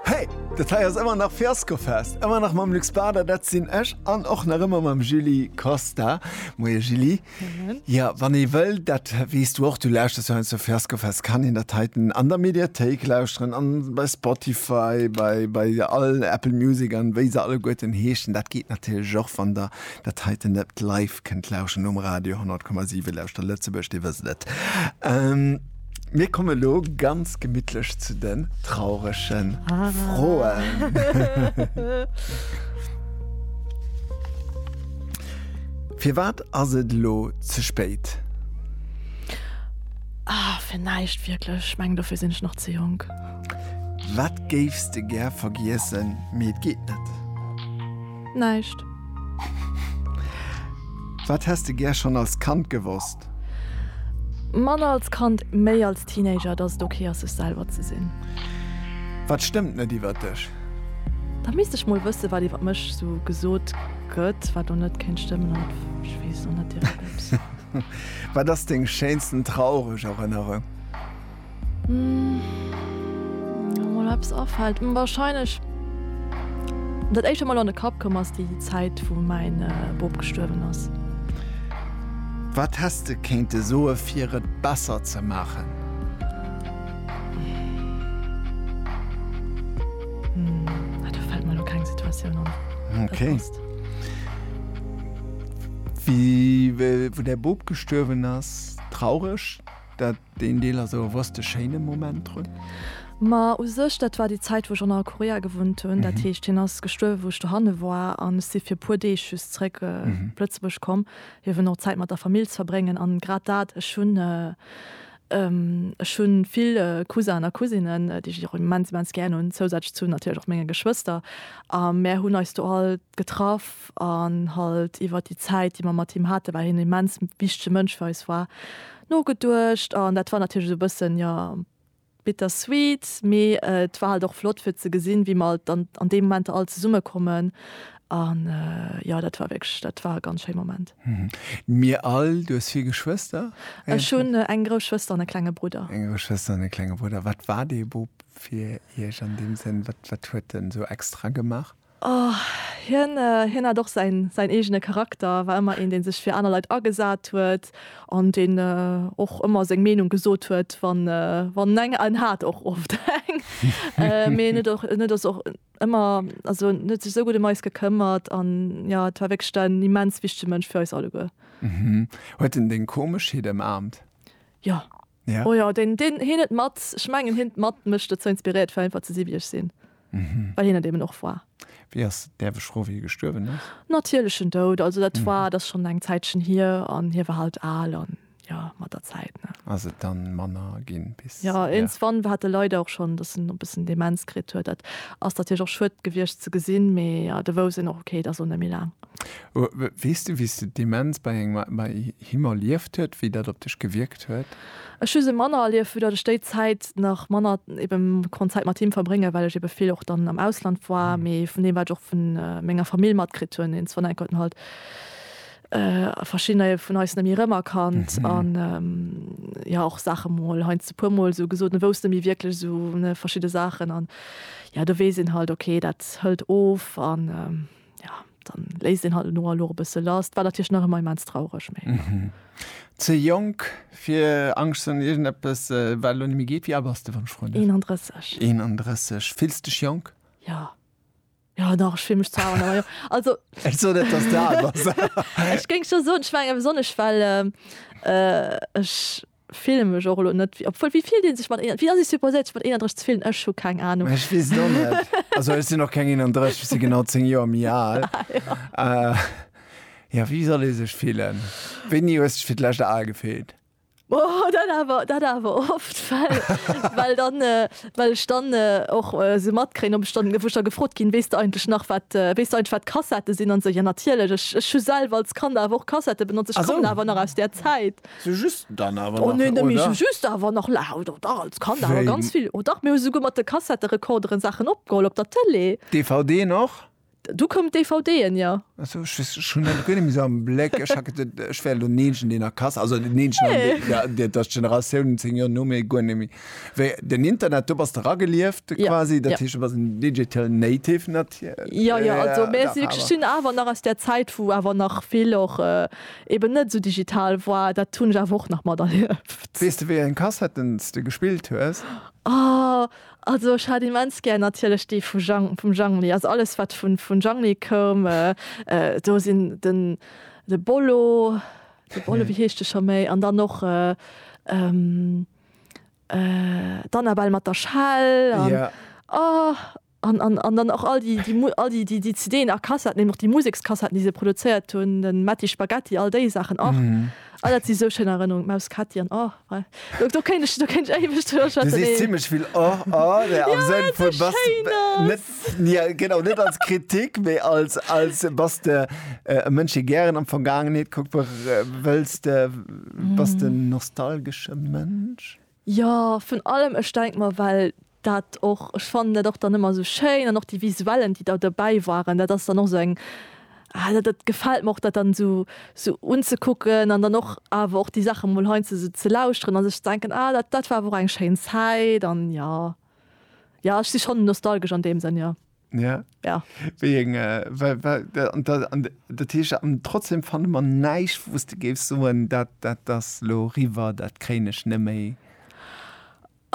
Hey! Dat hei ass ëmmer nach Fiaskofest! Ëmmer nach mam Luc Bader, dat sinn ech, an och nach ëmmer mam Julie Costa. Moie Julie. Moien. Jo, wann ee wëll, dat weess du och, du lauschters jo heiansdo de Fiaskofest, kann een dat heiten an der Mediathéik lauschteren an bei Spotify, bei, bei all Apple Music an wéi se alleguerten heeschen. Dat geet natierlech och, wann der dat heiten net live kënnt lauschen um Radio 100,7, Lauschter Lëtzebuerg, dir wësst et. Mir komme lo ganz gemittlech zu den trauregen ah. Froen. Fir wat ass et lo ze spéit? Ah, fir näischt wierklech. Ech mengen, dofir sinn ech nach ze jonk. Wat géifs de gär vergiessen, mee et geet net? Näischt. Wat häss de gär schonn als Kand gewosst? Manner als Kand, méi als Teenager, dass et ok ass, sech selwer ze sinn. Wat stëmmt net iwwert dech? Da misst ech mol wëssen, wat iwwert mech sou gesot gëtt, wat do net kéint stëmmen. An ech weess och net direkt, ob se. Wat ass deng schéinsten traureg Erënnerung? Mol eppes afällt wahrscheinlech dat éischt mol an de Kapp komm ass déi Zäit wou mäin Bop gestuerwen ass. Wat häss de kéinte soe fir et besser ze maachen? Do fält mer elo keng Situatioun an. Ok. Wéi wou däi Bop gestuerwen ass, traureg dat? Deen Deel ass awer wou's de schéine Moment drun. Ma u sech, dat war déi Zäit, wou ech an a Korea gewunnt hunn. Dat heescht, hien ass gestuerwe wou ech dohanne war an ech si fir e puer Deeg just zréck op Lëtzebuerg komm, fir eben och Zäit mat der Famill ze verbréngen. An grad dat, ech hunn, ech hu vill Cousin a Cousinen, déi ech och immens, immens gären hunn, zousätzlech zu natierlech och menge Geschwëster. A mär hunn eis do alt getraff an halt iwwert déi Zäit, déi mer mat him haten, well hien e immens wichtege Mënsch fir eis war, Nogeduecht an dat war natierlech esou e bëssen, jo, bitter sweet, mee et war halt och flott fir ze gesinn, wéi mer alt dann an deem Moment all zesumme kommen an jo, dat war wierklech, dat war e ganz schéi Moment. Mir all. Du hues vill Geschwëster? Ech hunn eng grouss Schwëster an e klenge Brudder. Eng grouss Schwëster an e klenge Brudder. Wat war dee Bub fir Iech an deem Sënn? Wat huet en esou extra gemaach? Oh, hien, hien hat och säin, säin eegene Charakter, war ëmmer een, dee sech fir aner Leit agesat huet an deen och ëmmer seng Meenung gesot huet, wann, wann eng, en hat och oft eng, mee en huet och, en huet och ëmmer, also en huet sech esou gutt ëm eis gekëmmert an jo, et war wierklech en immens wichtege Mënsch fir eis alleguer. Huet en deng Komeschheet ëmaamt? Jo. Ja. Oh jo, deen, deen, hien huet mat, ech mengen hien huet mat mech dozou inspiriert fir einfach ze si wéi ech sinn. Well hien et eben och war. Wéi ass, däerf ech froen, wéi hie gestuerwen ass? Natierlechen Doud, also dat war, dat ass schonn eng Zäitchen hier an hie war halt al an jo, mat der Zäit, ne. Ass et dann manner ginn bis. Jo, iergendswann war hat e leider och schonn, dass en e bëssen Demenz kritt huet. Dat ass natierlech och schued gewiescht ze gesinn, mee jo, do wousst een och, okay, et ass och net méi laang. Weess du, wéi s de d'Demenz bei engem, bei Him erlieft huet, wéi dat op dech gewierkt huet? Ech hu se manner erlieft, vu datt ech déi Zäit nach manner eben konnt Zäit mat him verbréngen, well ech eben vill och dann am Ausland war. Mee vun deem wat ech och vu menger Famill matkritt hunn, een Sven Eckert, halt verschiddener vun eis net méi rëmerkannt an jo och Saache mol heiansdo e puer mol sou gesot, en wousst net méi wierklech sou verschidde Saachen an jo do weess een halt ok dat hëlt of an. Ja, dann léisst een halt no a lo e bësse lass. War natierlech nach ëmmer immens traureg, mee ja. Ze jonk fir Angscht ze hunn, iergendeppes wat elo net méi geet. Wéi al bass de, wann ech froen däerf? 31. 31. Fills dech jonk? Ja. Jo, dach, ech fill mech zwar al, awer jo. Also, Ech soen net, dass de al bass. ech géing scho soen, ech menge besonnesch well ech fillen mech och elo net wéi obwuel wéi fillt een sech mat wéi ass ee supposéiert sech mat 31 ze fillen? Ech hu keng Anung. Ech weess et och net. Also ech sinn och keng 31, ech si genau 10 Joer méi al. Jo wéi soll ee sech fillen? Wéini hues dech fir d'lescht al gefillt? Oh dat awer dat awer oft well well dann well ech dann och sou matkréien ob ech dann wou ech da gefrot ginn, weess de eigentlech nach wat weess de eigentlech wat Kassettë sinn an esou, jo natierlech ech ech hu selwer als Kand awer och Kassettë benotzt, ech kommen awer nach aus där Zäit. Sou just dann awer nach, oder? Oh, sou just awer nach, la, oh, dach, als Kand awer ganz vill, oh, dach. Mir hu souguer mat de Kassetterekorderen Saachen opgeholl op der Tëlee. DVDen och? Du koum d'DVDen, jo. Ah, sou, ech weess, ech hunn dat guer net méi sou am Bléck. Ech hat geduet, ech wär elo d'Neenchen, deen a Kas-, also den Neenchen an deen, jo, dat ass d'Generatioun zéng Joer no mir, guer net méi. Wéi den Internet, do bass de ragelieft quasi, dat heescht, du bass en digital native natierlech. Jo, jo, also mir si wierklech, sinn awer nach aus där Zäit, wou awer nach vill och, eben net esou digital woar, dat hunn ech awer och nach materlieft. Weess de wéi eng Kassetten s de gespillt hues? Oh, also ech hat immens gär natierlech déi vu Jhang, vum Jhangli, also alles wat vun vun Jhangli koum, do sinn den de Bollo, de Bollo, wéi heescht de scho méi, an dann och d'Annabelle mat der Schell an oh. An dann och all déi CDen a Kassetten, eben och déi Musekskassetten, déi se produzéiert hunn, de Matti Spaghetti, all déi Saachen och. Oh, dat si sou schéin Erënnerungen, d'Maus Ketti an oh, wei. Do kéint ech éiweg driwwer schwätzen. Du sees zimmlech vill oh, oh, mä am Sënn vun, bass de. Jo, well et sou schéin ass. Jo, genau, net als Kritik, mä als, bass de e Mënsch, dee gären an d'Vergaangenheet kuckt? Wëlls de, bass de en nostalgesche Mënsch? Jo, vun allem. Ech denk mer, well dat och, ech fannen dat och dann ëmmer esou schéin an och déi Visuellen, déi da dobäi waren, dat ass dann och esou eng, ah dat gefält mer och, dat dann esou esou unzekucken an dann och awer och déi Saache mol heiansdo esou ze lauschteren a sech ze denken, ah dat war awer och eng schéin Zäit. An jo, jo ech si schonn nostalgesch an deem Sënn, jo. Ja. Ja. Wéi eng, well, well, an da, an dat heescht, an trotzdem fanne mer näischt, wou s de géifs soen, dat, dat ass elo riwwer, dat kréien ech net méi.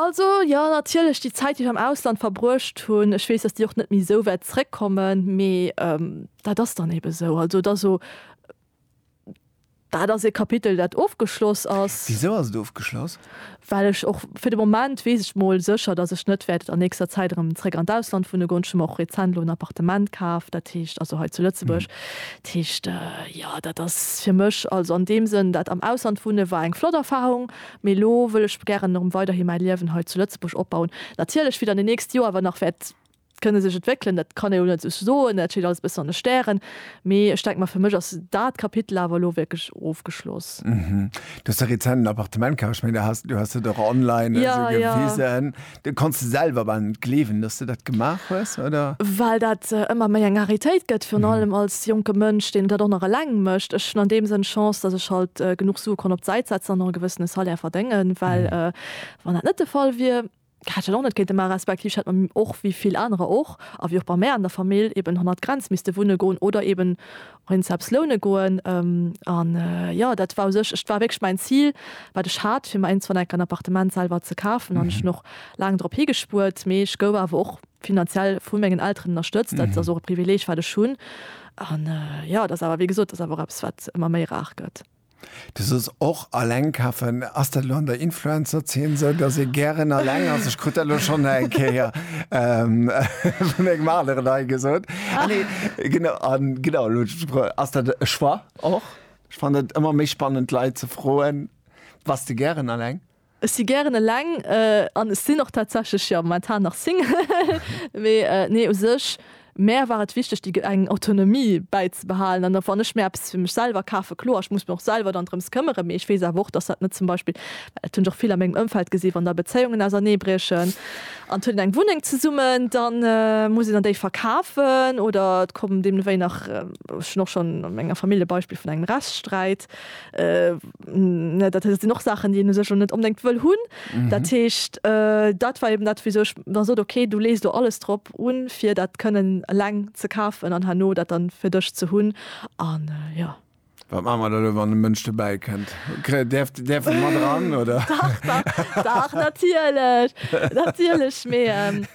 Also, jo, natierlech, déi Zäit, déi ech am Ausland verbruecht hunn, ech weess, datt déi och net méi esou wäert zréckkommen, mee dat ass dann ebe sou. Also, et ass o, Dat ass e Kapitel, dat ofgeschloss ass. Wisou ass et ofgeschloss? Well ech och, fir de Moment weess ech mol sécher, datt ech net wäert an nächster Zäit erëm zréck an d'Ausland wunne goen. Ech hu mer och rezent elo en Appartement kaf, dat heescht, also hei zu Lëtzebuerg. Dat heescht, jo, dat ass fir mech, also an deem Sënn, dat am Ausland wunne war eng flott Erfarung, mee elo wëll ech gären erëm weiderhi mäi Liewen hei zu Lëtzebuerg opbauen. Natierlech, wéi dann déi nächst Joer awer nach wäert Kënne sech entwéckelen, dat kann ee lo net sou soen, dat steet alles e bëssen an de Stären. Mee ech denke mer, fir mech ass dat Kapitel awer elo wierklech ofgeschloss. Du hues der rezent en Appartement kauft. Ech mengen, du has dat och online esou gewisen. Du konns de selwer bal net gleewen, dass du dat gemaach hues, oder? Well dat ëmmer méi eng Raritéit gëtt, virun allem als jonke Mënsch, deen dat och nach eleng mécht. Ech hunn an deem Sënn Chance, dass ech halt genuch Sue konnt op d'Säit setzen an och e gewëssene Salaire verdéngen, well wann dat net de Fall wier, Hat ech och net kéinte man, respektiv ech hätt mam och wéi vill anerer och, a wéi och bei mär an der Famill, eben hannert Grenz misste wunne goen oder eben och een Zaps loune goen. An jo, dat war u sech, et war wierklech mäin Zil, wat ech hat, fir mer iergendwann enk en Appartement selwer ze kafen. An ech hunn och laang drop higespuert, mee ech gouf awer och finanziell vu mengen Elteren ënnerstëtzt. Dat ass och e Privileeg, wat ech hunn. An jo, et ass awer, wéi gesot, et ass awer och eppes, wat ëmmer méi rar gëtt. Du soos och alleng kafen. Ass dat elo an der Influencer-Zeen esou, dass ee gären alleng ass? Ech krut dat elo schonn eng Kéier vun engem aneren hei gesot. Ah nee, genau, a genau, elo ass dat e Choix och. Ech fannen et ëmmer méi spannend d'Leit ze froen, Bass de gären alleng? Ech si gären eleng an ech sinn och tatsächlech jo momentan nach Single. Mee nee, u sech, mär war et wichteg déi eng Autonomie bäizebehalen an wann ech mir eppes fir mech selwer kafen, kloer ech muss mer och selwer dann drëms këmmeren, mee ech weess awer och, dass dat net zum Beispill, well dat hunn ech och vill a mengem Ëmfeld gesi wann da Bezéiungen auserneebriechen an et huet een eng Wunneng zesummen, dann muss een an déi verkafen oder et kommen deemnewéi nach, ech hunn och schonn a menger Famill e Beispill vun engem Rechtssträit, ne dat sinn och Saachen déi een u sech och net onbedéngt wëll hunn. Dat heescht dat war eben dat wéi sech da sot okay du lees do alles drop un fir dat kënnen eleng ze kafen an herno dat dann fir dech ze hunn an jo. Wat maache mer da elo wann e Mënsch dobäi kënnt? Kréie däerf däerf en mat eran oder? Dach dach dach natierlech natierlech mee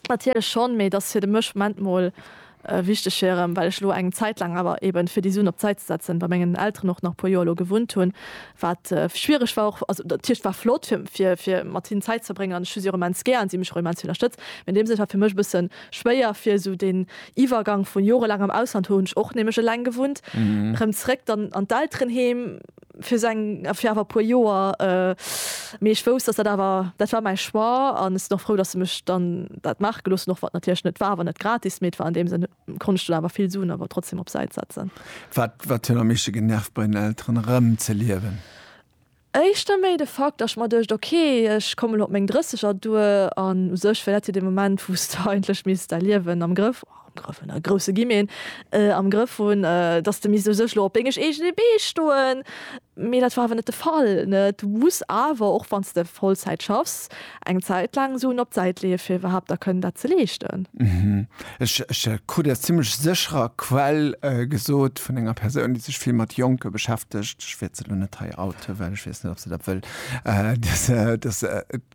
natierlech schonn mee et ass fir de Mësch Moment mol Wichteg fir erëm, well ech elo eng Zäit laang awer eben, fir déi Suen op d'Säit ze setzen, bei mengen Elteren och nach e puer Joer elo gewunnt hunn, wat schwiereg war och. Also dat heescht, war flott, fir, fir mat hinnen Zäit ze verbréngen an ech hu si och immens gär an si hu mech och immens vill ënnerstëtzt. Mee an deem Sënn, et war fir mech e bësse schwéier, fir esou deen Iwwergang vu jorelaangem Ausland, hu hunn ech och nämlech eleng gewunnt, erëm zeréck dann an d'Elterenheem. fir seng fir awer e puer Joer mee ech wousst dass dat awer dat war mäi Choix an ech sinn och frou dass se mech dann dat maache gelooss hunn, och wann et natierlech net war awer net gratis mee et war an deem Sënn konnt ech dunn awer vill Suen awer trotzdem op Säit setzen. Wat wat huet am meeschte genervt bei den Elteren erëm ze liewen? Éischter méi de Fakt dass ech mer duecht ok ech kommen elo op meng Drësseger duer an u sech wär dat jo dee Moment wou s de eigentlech misst däi Liewen am Grëff am Grëff hunn, a grousse Gi meen, am Grëff hunn, dass de misst u sech elo op dengeg eegene Bee stoen. Mee dat war awer net de Fall. Du muss awer, och wann s de Vollzäit schaffs, eng Zäit laang Suen op d'Säit leeë fir iwwerhaapt da kënnen dat ze leeschten. Ech krut aus zimmlech sécherer Quell gesot, vun enger Persoun, déi sech vill mat Jonke beschäftegt, ech wäert se elo net hei outen, well ech weess net, ob se dat wëll, dass,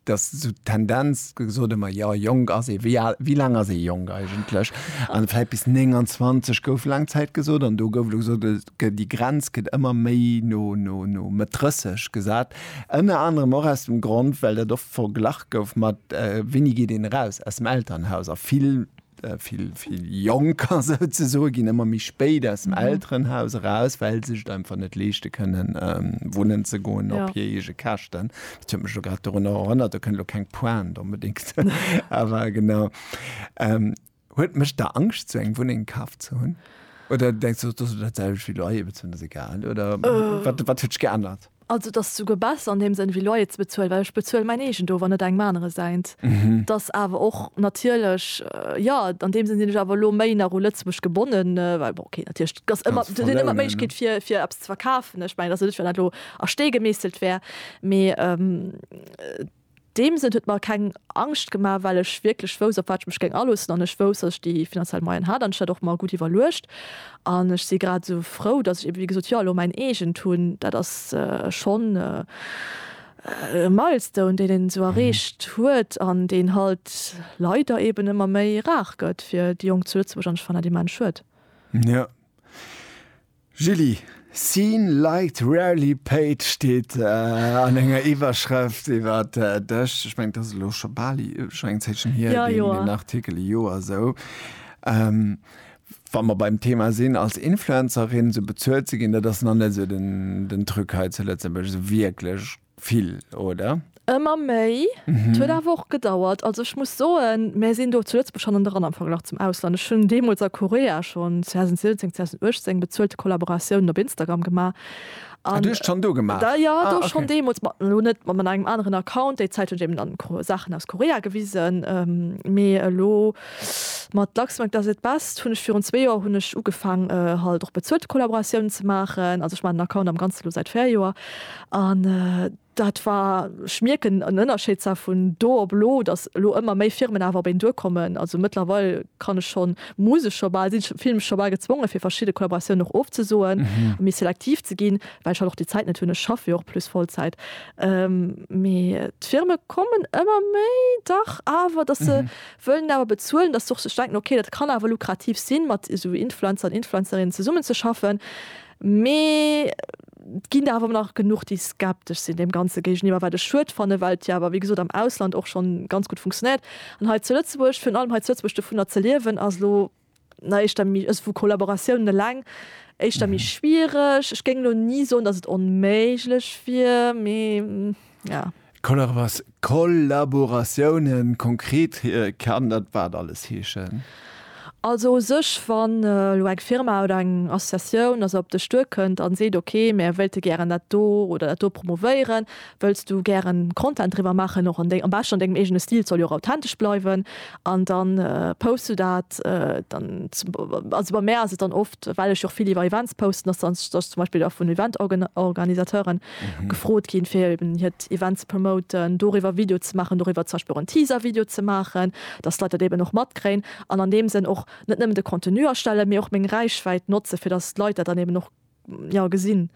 dass sou d'Tendenz gesot ëmmer, jo jonk ass ee, wéi al, wéi laang ass ee jonk eigentlech? An vläit bis 29 gouf laang Zäit gesot an do gouf elo gesot, et gëtt, déi Grenz gëtt ëmmer méi no, no, no Mëtt 30 gesat. Ënner anerem och aus dem Grond, well dat oft verglach gouf mat, Wéini geet een eraus aus dem Elternhaus? A vill. vill vill Jonker souzesoe ginn ëmmer méi spéit aus dem Elterenhaus eraus, well se et einfach net leeschte kënnen, wunnen ze goen op hir eege Käschten. Dat huet mech elo grad dorunner erënnert, do kënnt elo keng Pointe onbedéngt, awer genau. Huet, mécht der Angscht, esou eng Wunneng kaf ze hunn? Oder denkst de, dat ass elo dat selwecht wéi Loyer bezuelen, dat ass egal? Oder wat huet sech geännert? Also et ass souguer besser an deem Sënn wéi Loyer ze bezuelen, well ech bezuele mäin eegent of an net engem anere säint. Et ass awer och natierlech, jo, an deem Sënn sinn ech awer elo méi nach u Lëtzebuerg gebonnen, well bon, okay, natierlech et ass ëmmer, et ass ëmmer d'Méiglechkeet fir fir eppes ze verkafen. Ech mengen, et ass jo net, wéi wann dat elo a Stee gemeesselt wär, mee. deem Sënn huet mer keng Angscht gemaach, well ech wierklech wousst, op wat ech mech géing aloossen, an ech wousst, datt ech déi finanziell Moyen hat, an ech hat och mer gutt iwwerluecht. An ech si grad esou frou, datt ech eebe wéi gesot jo elo mäin eegent hunn. Dat ass schonn e Milestone, deen een esou erreecht huet, an deen halt leider eeben ëmmer méi rar gëtt fir déi Jonk zu Lëtzebuerg, an ech fannen dat immens schued. Julie, Seen liked, rarely paid steet an enger Iwwerschrëft iwwer dech. Ech mengen, dat ass elo scho bal scho eng Zäitchen hier, deen Artikel, e Joer esou. Wa mer beim Thema sinn, als Influencerin esou bezuelt ze ginn, dat ass nach net esou den Truc hei zu Lëtzebuerg, esou wierklech. Vill, oder? Ëmmer méi. Et huet awer och gedauert. Also ech muss soen, mär sinn do zu Lëtzebuerg hannen dran am Verglach zum Ausland. Ech hunn deemools a Korea schonn 2017, 2018 bezuelte Kollaboratiounen op Instagram gemaach. Ah, du hues et schonn do gemaach? Da jo, do schonn deemools. Ma elo net mat engem aneren Account. Déi Zäit hunn ech eben dann Saachen aus Korea gewisen. Mee elo mat Luxembourg does it best hunn ech virun zwee Joer hunn ech ugefaang halt och bezuelte Kollaboratiounen ze maachen. Also ech maachen den Account am Ganze elo säit véier Joer. An dat war, ech mierken en Ënnerscheed zwar vun do op elo, datt elo ëmmer méi Firmen awer op een duerkommen. Also mëttlerweil kann ech schonn, muss ech scho bal, sinn ech, fillen ech scho bal gezwongen, fir verschidde Kollaboratiounen och ofzesoen a méi selektiv ze ginn, well ech halt och déi Zäit net hunn. Ech schaffe jo och plus Vollzäit. Mee d'Firme kommen ëmmer méi, dach awer, datt se wëllen awer bezuelen, datt se och sech denken, ok, dat kann awer lukrativ sinn, mat esou Influencer an Influencerinnen zesummenzeschaffen. Mee. Et ginn der awer nach genuch, déi skeptesch sinn deem Ganze géigeniwwer, wat ech schued fanne well et jo awer, wéi gesot, am Ausland och schonn ganz gutt funktionéiert. An hei zu Lëtzebuerg, virun allem hei zu Lëtzebuerg, dovunner ze liewen ass elo na éischter méi, ës vu Kollaboratiounen eleng, éischter méi schwiereg. Ech géing elo ni soen, datt et onméiglech wier, mee. Ja. Kollabora Kollaboratiounen, konkret kann dat wat alles heeschen? Also u sech, wann elo eng Firma oder eng Associatioun also op dech duerkënnt an seet, ok mär wéilte gären dat do oder dat do promovéieren, wëlls du gären Content driwwer maachen, och an deng am beschten an dengem eegene Stil, et soll jo och authentesch bleiwen, an dann posts du dat dann zum also bei mär ass et dann oft. well ech och vill iwwer Events posten, dass dann dass zum Beispill vun Event-Organisateuren gefrot ginn, fir eben hiert Event ze promoten, doriwwer e Video ze maachen, doriwwer zum Beispill och en Teaser-Video ze maachen, dass d'Leit dat eben och matkréien an an deem Sënn och net nëmmen de Contenu erstellen, mee och meng Räichwäit notze fir dass d'Leit dat dann eben och, jo, gesinn.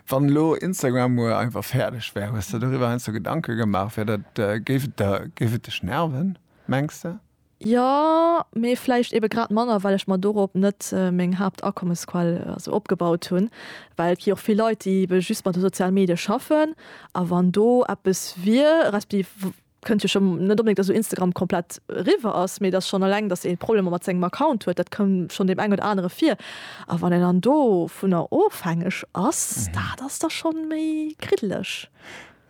Wann elo Instagram muer einfach fäerdeg wär, hues de doriwwer heiansdo Gedanke gemaach, wär dat, géif et der, géif et dech nerven, mengs de? Jo, mee vläicht ebe grad manner, well ech mer dorop net meng Haaptakommesquell esou opgebaut hunn. Well et gi och vill Leit, déi ebe just mat de soziale Medie schaffen. A wann do eppes wier, respektiv kënnt jo schonn net onbedéngt, datt elo Instagram komplett eriwwer ass, mee datt schonn eleng, datt ee Problemer mat sengem Account huet, dat koum schonn deem engen oder anere vir. A wann een dann dovunner ofhängeg ass, dat ass da schonn méi kriddeleg.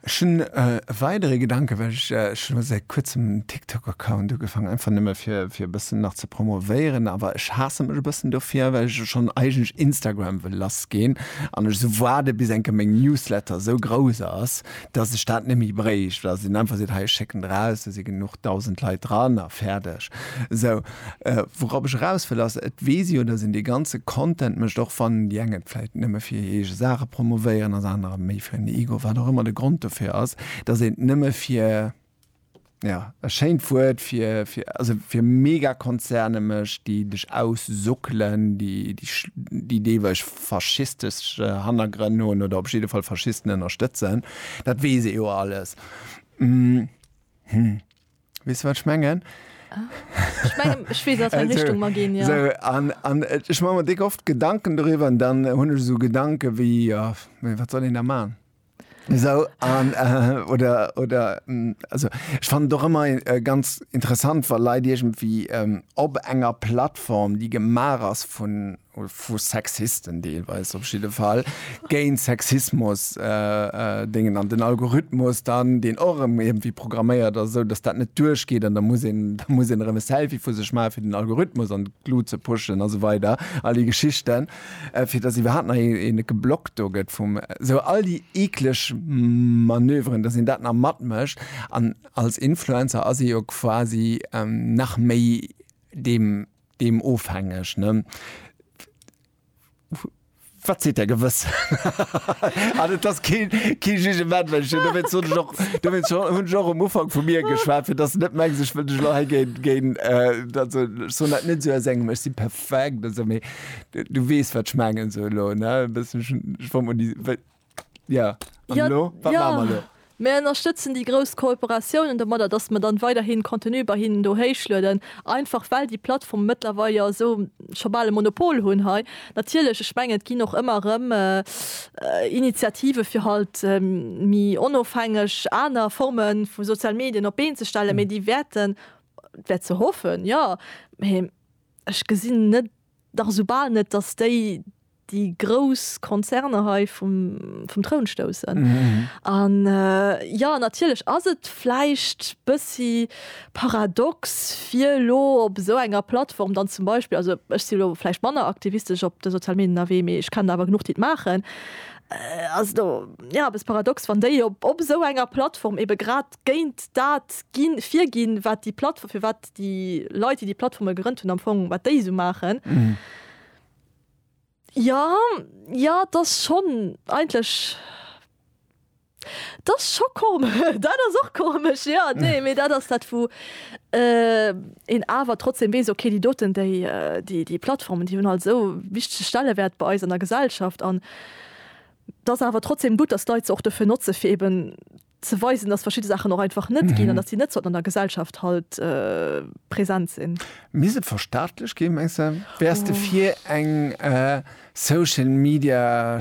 Ech hunn e weidere Gedanken, well ech ech hunn elo säit kuerzem en TikTok-Account ugefaangen, einfach nëmme fir fir e bëssen nach ze promovéieren, awer ech haasse mech e bëssen dofir, well ech elo schonn eigentlech Instagram wëll lassgeen an ech esou waarde bis enke meng Newsletter esou grouss ass, dass ech dat net méi bréicht, well dass een einfach seet, hei ech schécken der aus, do si genuch dausend Leit dran a fäerdeg esou. Wourap ech eraus wëll ass, et weess jo, dass een dee ganze Content mécht, och wann déi eng et vläicht nëmme fir hir eege Saache promovéieren, ass anerer méi fir en Ego, wat och ëmmer de Grond dofir ass, dass een et nëmme fir, jo, e schéint Wuert, fir, also fir Megakonzerne mécht, déi dech aussuckelen, déi deelweis faschistesch Hannergrënn hunn oder op jidde Fall Faschisten ënnerstëtzen. Dat weess ee jo alles. Hm. Wees du wat ech mengen? Ech mengen ech wees wat Richtung ma gin ja. So, an, an äh, ech ma mer dick oft Gedanken doriwwer an dann hunn ech so Gedanke wéi ja, wat soll een da man? So, an, äh, oder, oder mm, also ech fand doch ëmmer äh, ganz interessant, wa Leit irgendwie ähm, op enger Plattform, déi gemaach ass vun oder vu Sexisten deelweis op jidde Fall, géint Sexismus dingen an den Algorithmus dann, deen och erëm iergendwéi programméiert ass, esou datt dat net duerchgeet an da muss een, da muss een erëm e Selfie vu sech maachen, fir den Algorithmus an d'Glut ze pushen a sou weider, all déi Geschichten, fir datt iwwerhaapt nach een e geblockt do gëtt vum. Esou all déi eekleg Manöveren, datt een dat nach matmécht. An als Influencer ass ee jo quasi nach méi deem. Deem ofhängeg, ne? Wat seet Är Gewëssen? An et ass kee Jugement, well ech hunn dowéinst hunn ech och, dowéinst hunn ech och um Ufank vu mir geschwat, fir datt se net mengs, ech wëll dech elo hei géint, géint, also ech soen dat net esou aus engem Ech si perfekt, also, mee du weess, wat ech mengen esou elo, ne? E bëssen, ech wor mol déi, Ja, an ja, lo? Wat ja. machen wir lo? Mir ënnerstëtzen déi grouss Kooperatiounen domadder, dass mer dann weiderhin Contenu bei hinnen do héichlueden, einfach well déi Plattformen mëttlerweil jo esou scho bal e Monopol hunn hei. Natierlech, ech mengen, et ginn och ëmmer erëm Initiative fir halt méi onofhängeg aner Forme vu soziale Medien op d'Been ze stellen, mee déi wäerten, et wär ze hoffen, jo, mee ech gesinn net, nach esou bal net, dass déi déi grouss Konzerner hei vum Troun stoussen. An jo, natierlech ass et vläicht bëssi paradox fir elo op esou enger Plattform dann zum Beispill, also ech si elo vläicht manner aktivistesch op de sozial Medien ënnerwee, mee ech kennen der awer genuch, déi et maachen, ass et jo eppes paradox, wann déi op esou enger Plattform ebe grad géint dat virginn, wat déi Plattform, firwat déi Leit, déi déi Plattforme gerënnt hunn, am Fong wat déi esou maachen. Jo, jo, 't ass schonn eigentlech, 't ass scho kom, dat ass och komesch, jo, nee, mee dat ass dat, wou een awer trotzdem weess, ok, déi doten, déi, déi, déi Plattformen, déi hunn halt esou e wichtege Stellewäert bei eis an der Gesellschaft an 't ass awer trotzdem gutt, dass d'Leit se och dofir notze fir eben ze weisen, dass verschidde Saachen och einfach net ginn an dass déi net sollten an der Gesellschaft halt present sinn. Misst et verstaatlech ginn, mengs de? Wäers de fir eng Social Media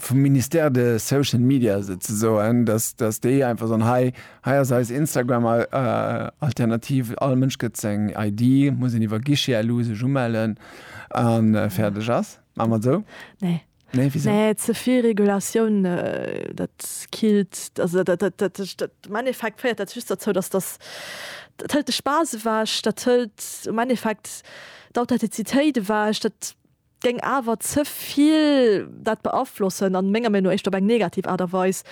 vum Ministère de Social Media souzesoen, dass déi einfach soen, hei ass eis Instagram Alternativ, all Mënsch gëtt seng ID, muss een iwwer Guichet elo sech umellen a fäerdeg ass? Maache mer et esou? Nee. Nee, wéi se. Nee, ze vill Regulatioun, dat killt, also dat, dat, dat, dat, dat, am Endeffekt féiert dat just derzou, dass dass, dat hëlt de Spaass ewech, dat hëlt am Endeffekt d'Authentizitéit ewech, dat géing awer ze vill dat beaflossen a menger Meenung no éischter op eng negativ Aart a Weis.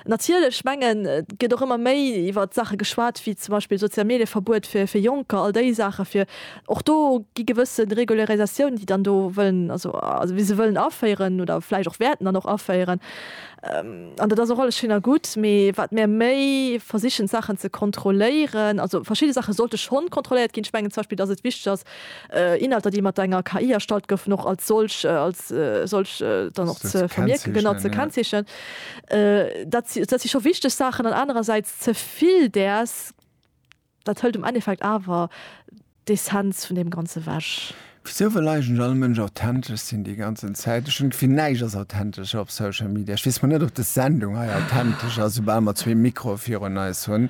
Natierlech, ech mengen, et gëtt och ëmmer méi iwwert Saache geschwat wéi zum Beispill Sozial-Medie-Verbuet fir fir Jonker, all déi Saache fir Och do gi gewësse Regularisatiounen, déi dann do wëllen, also wéi se wëllen aféieren oder vläicht och wäerten dann och aféieren. An dat ass och alles schéin a gutt, mee wat mir méi versichen d'Saachen ze kontrolléieren, also verschidde Saache sollte schonn kontrolléiert ginn. Ech mengen zum Beispill, datt et wichteg ass, Inhalter, déi mat enger KI erstallt goufen, och als solch, als solch dann och ze vermierken, genau, ze kennzeechnen. Dat si scho wichteg Saachen. An anerersäits, ze vill däers Dat hëlt am Endeffekt awer d'Essenz vun deem Ganze wech. Wisou wëll eigentlech all Mënsch authentesch sinn déi ganzen Zäit? Ech hunn d'Gefill, näischt ass authentesch op Social Media. Ech weess mol net, ob dës Sendung hei authentesch ass, soubal mer zwee Mikroe virun eis hunn.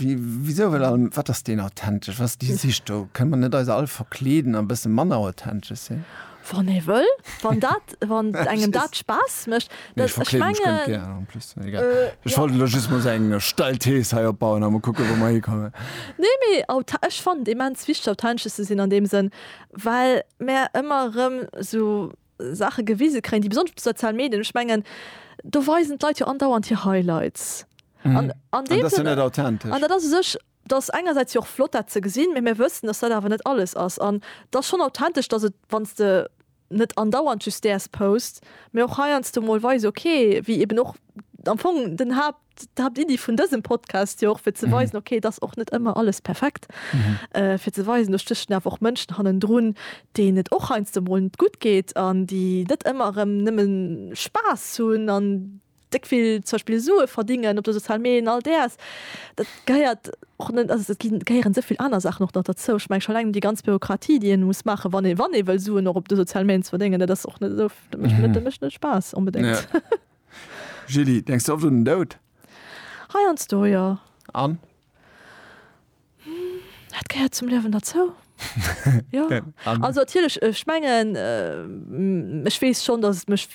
Wisou wëll all, wat ass deen authentesch, wat ass déi Sich do? Kënne mer net eis all verkleeden a e bësse manner authentesch sinn? Wann ee wëll, wann dat, wann engem dat Spaass mécht. Nee, ech verkleeden mech ganz gär en plus. Egal. Äh, ech ja. wollte lo just mol eng äh, steil Thees hei opbauen a mol kucke wou mer hikommen. Nee, mee auta ech fand immens wichteg authentesches ze sinn an deem Sënn, well mer ëmmer rëm sou Sache gewise kréien, déi besonnesch op de sozialen Medien, ech mengen do weisen d'Leit jo andauernd hir Highlights. Mhm. An, an, an dat ass net authentesch. An dat ass sech Et ass engersäits jo och flott dat ze gesinn, mee mir wëssen, dass dat awer net alles ass. An et ass schonn authentesch, dass et, wann s de net andauernd just däers posts, mee och heiansdo mol weise, okay, wéi eben och am Fong den Haapt, d'Haaptiddi vun dësem Podcast jo och, fir ze weisen, okay, et ass och net ëmmer alles perfekt, fir ze weisen, do stéchen awer och Mënschen hannendrun, deenen et och heiansdo mol net gutt geet an déi net ëmmer erëm nëmme Spaass hunn an déck vill zum Beispill Sue verdingen op de soziale Medien, all däers, dat gehéiert och net, also et ginn, gehéieren esou vill aner Saachen och nach derzou. Ech mengen scho eleng déi ganz Bürokratie, déi een muss maachen, wann ee, wann ee wëll Suen och op de soziale Medien ze verdéngen, dat ass och net esou, dat mécht net, dat mécht net Spaass onbedéngt. Julie, denks de oft un den Doud? Heiansdo, jo. An? Dat gehéiert zum Liewen derzou, jo. Also natierlech, ech mengen, ech weess schonn, dass et mech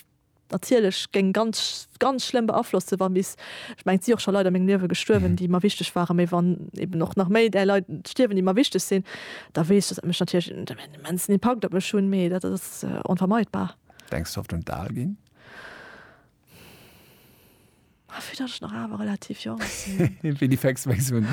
natierlech géing ganz, ganz schlëmm beaflossen, wa bis, ech mengen, et si och scho Leit a mengem Liewe gestuerwen, déi mer wichteg waren, mee wann eben och nach méi där Leit stierwen, déi mer wichteg sinn, da weess ech, dass dat mech natierlech en immensen Impakt op mech hunn, mee dat ass onvermeidbar. Denks de oft un d'Al ginn? Ah, vu dat ech nach awer relativ jonk sinn. Wéi déi Facts wéi sinn.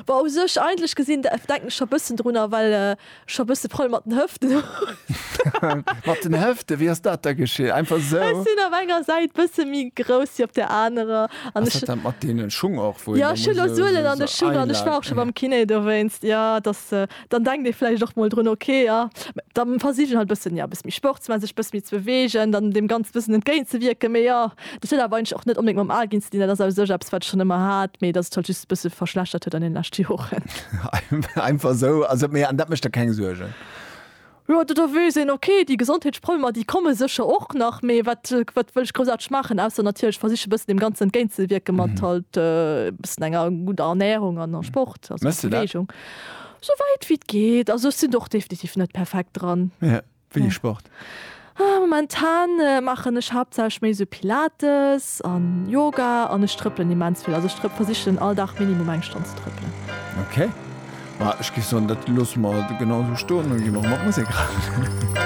Wa u sech eigentlech gesinn, da denken ech scho bëssen drunner, well ech scho bësse Probleme mat den Hëften hunn. Mat den Hëften? Wéi ass dat da geschitt? Einfach sou? Ech sinn op enger Säit bësse méi grouss wéi op der anerer. An ech. Ass dat dat mat deenen Schung och, wou een da muss esou. Jo, ech hu elo Suelen an de Schung an ech war och scho beim Kiné dowéinst. Jo, et ass. Dann denkt ee vläicht och mol drun, ok, jo, da versich ech halt e bëssen, jo, e bësse méi Sport ze maachen, sech e bësse méi ze beweegen, dann deem Ganze e bëssen entgéint ze wierken. Mee jo, dat huet awer eigentlech och net onbedéngt mam Al ginn ze dinn. Dat ass a u sech eppes, wat ech schonn ëmmer hat, mee dat sech halt just e bësse verschlechtert huet an deene leschte Joren. Einfach esou? Also, mee an dat mécht der keng Suergen? Jo, do do weess een, okay, déi Gesondheetsproblemer, déi komme sécher och nach, mee wat, wat wëll ech groussaarteg maachen, ausser natierlech versiche e bëssen deem Ganzen entgéint ze wierken mat halt e bëssen enger gudder Ernärung an a Sport, also Méchs du dat? Beweegung. Souwäit wéi et geet. Also ech sinn do och definitiv net perfekt dran. Wéini Sport? Momentan maachen ech haaptsächlech méi sou Pilates an Yoga an ech trëppelen immens vill. Also ech trëpp, versichen all Dag minimum eng Stonn ze trëppelen. Ok, ma ech géif soen dat loosse mer genau esou stoen an ginn och mat Musek ran.